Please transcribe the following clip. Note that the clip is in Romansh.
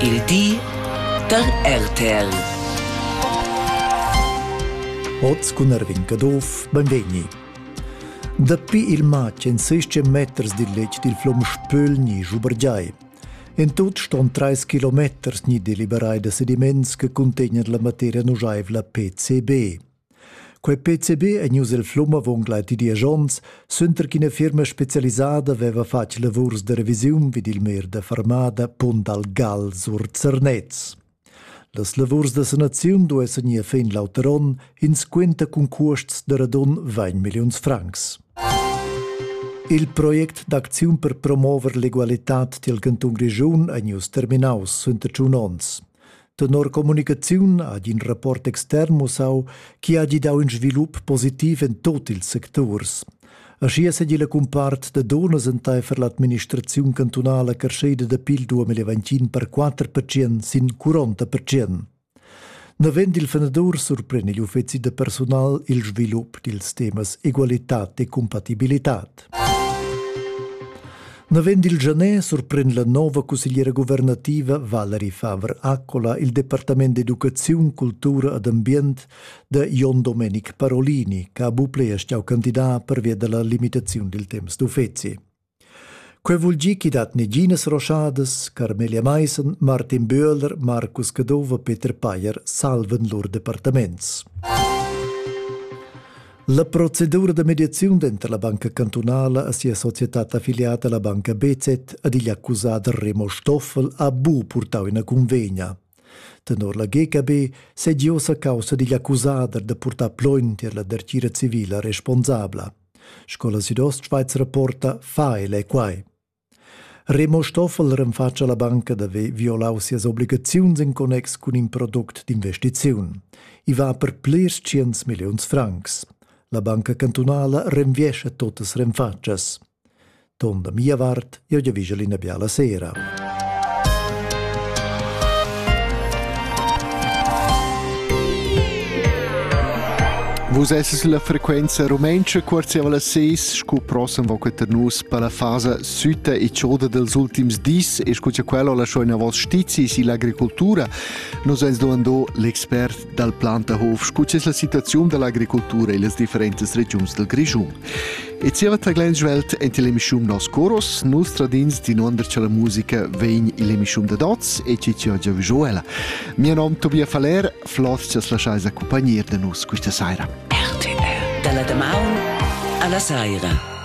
Il di da RTL. Oz cun Erwin Caduff, benvegni. Dapi il matg en 16 meters dil letg dil flum Spöl ni Schubergiai. En tut ston 3 kilometers ni deliberai da sediments che contegnan la materia nujaivla PCB. Quei PCB ei ius el flum avon gleiti diesch onns, suenter ch'ina firma specialisada veva fatg lavurs de revisiun vid il mer de Farmada Pont dal Gal sur Zernez. Las lavurs da sanaziun duessan ir fin l'auter onn, ins quenta cun cuosts de radun 20 milliuns francs. Il project d'acziun per promover l'egualitad dil cantun Grischun ei ius terminaus suenter tschun onns. Tenor communicaziun ha in rapport extern mussau chi ha gidau in svilup positiv in tot ils secturs. Aschia segi la cumpart da donas enteifer l'administraziun cantunala crescheda da pil 2021 per 4 percent sin 40 percent. Navend il fenadur surpren igl uffeci da personal il svilup dils temas egualitat e compatibilitad. Navend il Janet surprend la nova cussegliera guvernativa Valerie Faber-Accola il Departament d'educaziun, cultura ed ambient da Jon Domenic Parolini, che ha buple e stau candidat pervia della limitazione del temps d'uffeci. Quei vul gi chi dat neginas roschadas, Carmelia Meissen, Martin Böhler, Markus Cadova, Peter Payer salven lur departaments. La procedura da mediaziun denter la banca cantunala e sia societad affiliata la banca BZ ad igl accusader Remo Stoffel ha bu purtau ina convegna. Tenor la GKB segi ossa caussa digl accusader da purtar plogn tier la dertgira civila responsabla. Scola Südost-Schweiz rapporta fa ele quai. Remo Stoffel renfatscha la banca d'haver violau sias obligaziuns en connex cun in product d'investiziun. I va per plirs tschients milliuns francs. La banca cantunala renviescha totas renfatschas. Ton da mia vart, io giavigel ina biala sera. Vus esses la frequenza rumentscha, cuorziava la seis, scu prossem voca tar nus per la fasa sütta e choda dels ultims dis e scu cha quella ho lasciò inavos stizis ill'agricoltura, nos ens domandò l'expert dal Plantahof scu es la situaziun dall'agricoltura illas differentas regiuns del Grischun. E zieva taglend svelt ent l'emischum Nos Coros, nus tradins dinuonder cha la musica vegn ill'emischum da dots e chi chi oggi vigiò ella. Mia nom Tobia Faller, flot ch'as laschais accompagnir da nus questa saira. RTL. Dalla damaun alla saira.